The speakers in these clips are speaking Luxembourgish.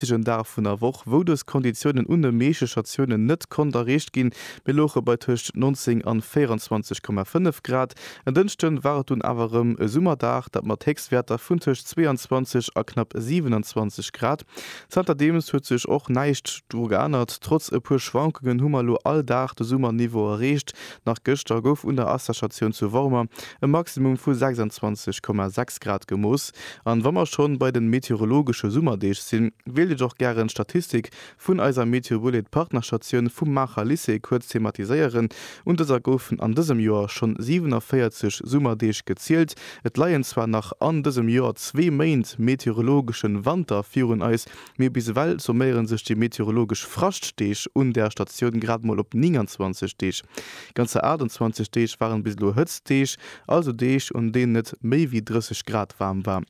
richtegen Dag vun der Woch, wou dës Konditiounen un de meeschte Statiounen net konnt erreecht ginn. Mir louche bei tëscht 19 an 24,5 Grad. En Dënschde war et dunn awer erëm e Summerdag, dat mat Héchstwäerter vun tëscht 22 a knapp 27 Grad. Zanterdeems huet sech och näischt dru geännert, trotz e puer Schwankungen hu mer elo all Dag de Summerniveau erreecht, Nach gëschter gouf un der Assashatioun zu Wormer e Maximum vu 26,6 Grad gemooss. An wa mer schonn bei den meteorologesche Summerdeeg sinn, wéilt ech och gären d'Statistik vun eiser Meteobullet Partnerstatioun vum Maacher Lycée kuerz thematiséieren. Un dëser goufen an dësem Joer schonn 47 Summerdeeg gezielt. Et leien zwar nach an dësem Joer zwee Méint meteorologeschen Wanter virun eis, Mee bis ewell summéiere sech déi meteorologesch Fraschtdeeg un där Statioun grad mol op 29 Deeg. Ganzer 28 Deeg waren bis elo Hëtztdeeg, also Deeg, un deenen et méi wéi 30 Grad waarm war.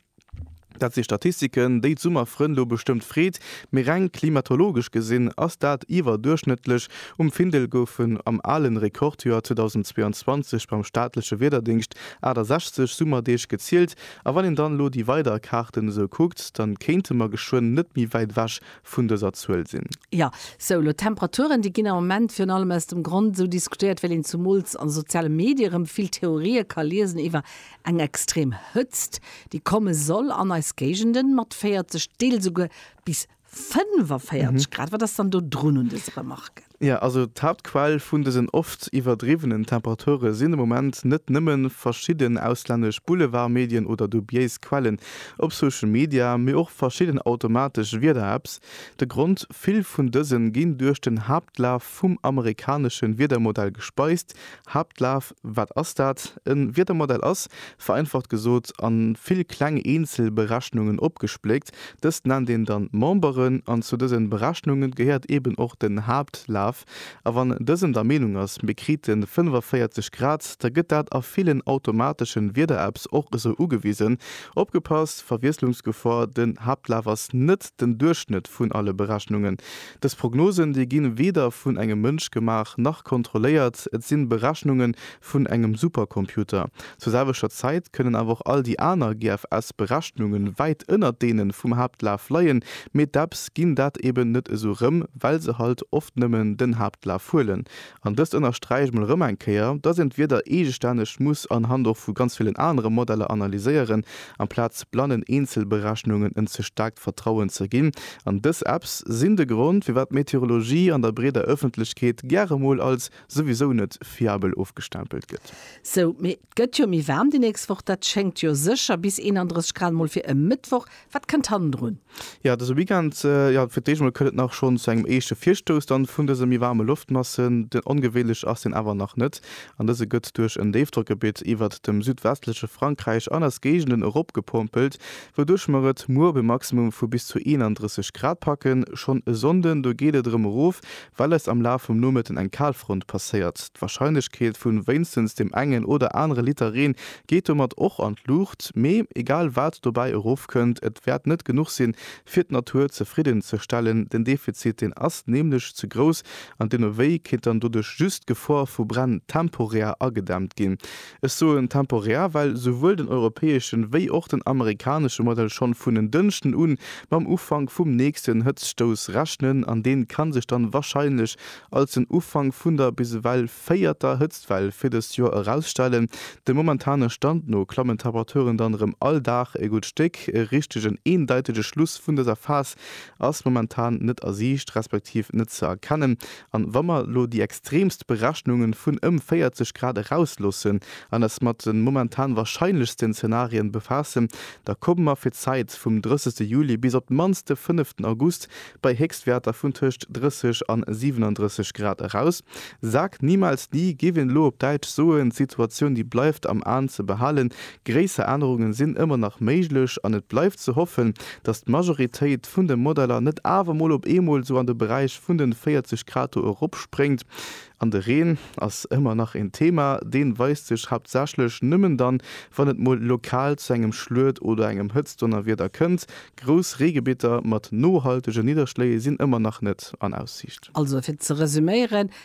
Dat si Statistiken, déi d'Summerfrënn elo bestëmmt freet, mee reng klimatologesch gesinn ass dat iwwerduerchschnëttlech. Um Findel goufen am ale Rekordjoer 2022 beim staatleche Wiederdéngscht 68 Summerdeeg gezielt, A wann een dann elo déi weider Kaarten esou kuckt, da kéinte mer geschwënn net méi wäit ewech vun dëser Zuel sinn. Jo, sou, elo d'Temperaturen, déi ginn am Moment virun allem aus dem Grond esou diskutéiert, well een zumools an de soziale Medie erëm vill Theorië ka liesen iwwer eng extrem Hëtzt, déi komme soll an eis Géigenden, mat 40, deels esouguer bis 45 Grad, wat ass dann do drun un dëse Remarquen? Jo, also d'Haaptquell vun dësen oft iwwerdriwwenen Temperature sinn de Moment net nëmme verschidden auslännesch Boulevardmedien oder dubiéis Quellen op Social Media, mee och verschidden automatesch Wieder-Apps. De Grond, Vill vun dësen ginn duerch den Haaptlaf vum amerikanesche Wiedermodell gespeist, Haaptlaf, Wat ass dat? E Wiedermodell ass, vereinfacht gesot, a vill kleng eenzel Berechnungen opgespléckt. Dëst nennt een dann Memberen, an zu dësen Berechnungen gehéiert eben och den Haaptlaf. A wann dësen der Meenung ass, mir kriten 45 Grad, da gëtt dat a villen automateschen Wiederapps och esou ugewisen. Opgepasst, Verwiesslungsgefor, den Haaptlaf ass net den Duerchschnëtt vun alle Berechnungen. Dës Prognosen, déi ginn weder vun engem Mënsch gemaach, nach kontrolléiert. Et sinn Berechnungen vun engem Supercomputer. Zur selwechter Zäit kënnen awer och all déi aner GFS Berechnungen wäit ënnert deenen vum Haaptlaf leien, mee d'Apps ginn dat eben net esou rëm, well se halt oft nëmmen den Haaptlaf huelen An dëst ënnersträicht mol erëm eng Kéier, dass een d'Wieder eegestänneg muss an Hand och vu ganz villen anere Modeller analyséieren, amplaz blannen Eenzelberechnungen en ze staarkt Vertrauen ze ginn. An dës Apps sinn de Grond, firwat d'Meteorologie an der breeder Ëffentlechkeet gäre mol als souwisou net fiabel ofgestempelt gëtt. Sou, mee Gëtt jo méi waarm déi nächst Woch, dat schéngt jo sécher bis 31 Grad mol fir e Mëttwoch. Wat kënnt hannendrun? Jo, dëse Weekend, jo fir d'éischt mol, kënnt et nach schonn zu engem éischte Virstouss dann vun dëse méi waarme Loftmassen. Ongewéinlech ass deen awer nach net an dëse gëtt duerch en Déifdrockgebitt iwwert dem südwestleche Frankräich an eis Géigenden eropgepompelt, wouduerch mer et muer op e Maximum vu bis zu 31 Grad packen. Schonn e Sonnden, do geet et erëm erof, Well eis am Laf vum Nomëtten eng Kalfront passéiert, d'Warscheinlechkeet vun wéinstens dem engen oder anere Liter Reen geet domat och an d'Luucht. Mee egal wat dobäi erofkënnt, et wäert net genuch sinn, fir d'Natur zefridden ze stellen. Den Defizit, deen ass nämlech ze grouss an deemno wéi kéint dann doduerch just d'Gefor vu Bränn temporär agedämmt ginn. Ech soen temporär, well souwuel den europäeschen wéi och den amerikanesche Modell schonn vun en Dënschden un mam Ufank vum nächsten Hëtztstouss rechnen, an deen kann sech dann wahrscheinlech als den Ufank vun der bis ewell véierter Hëtztwell fir dëst Joer erausstellen. Dem momentane Stand no klammen d'Temperaturen dann erëm all Dag e gutt Stéck. E richtegen, eendeitege Schluss vun dëser Phas ass momentan net a Siicht, respektiv net ze erkennen, An wa mer elo déi extremst Berechnungen vun ëm 40 Grad erausloossen an eis mat den momentan wahrscheinlechsten Zenarien befaassen, da kommen mer fir d'Zäit vum 30 Juli bis op d'mannst de 5 August bei Héchstwäerter vun tëscht 30 an 37 Grad eraus. Sag niemals nie, géif een elo op Däitsch soen. D'Situatioun déi bleift am Aen ze behalen, Gréisser Ännerungen sinn ëmmer nach méiglech an et bleift ze hoffen, datt d'Majoritéit vun de Modeller net awer mol op eemol sou an de Beräich vun den 40 Grad do eropspréngt. An de Reen ass ëmmer nach een Thema. Deen weist sech haaptsächlech nëmmen dann, wann et mol lokal zu engem Schluet oder engem Hëtztdonnerwieder kënnt. Grouss Reegebitter mat nohaltegen Nidderschléi sinn ëmmer nach net an Aussiicht. Also fir ze resuméieren,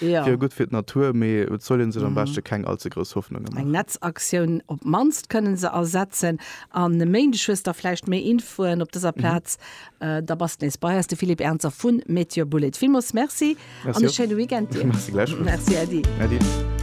wier gutt fir d'Natur, mee et soll ee sech am beschte keng all ze grouss Hoffnunge maachen. Eng Netzaktioun op d'mannst kënnen se ersetzen an e Méindeg hues da vläicht méi Infoen op dëser Plaz. Da bass nees bei eis, de Philippe Ernzer vu Meteobullet. Villmools Merci an e schéine Weekend dir. Merci gläichfalls. Merci Äddi. Äddi.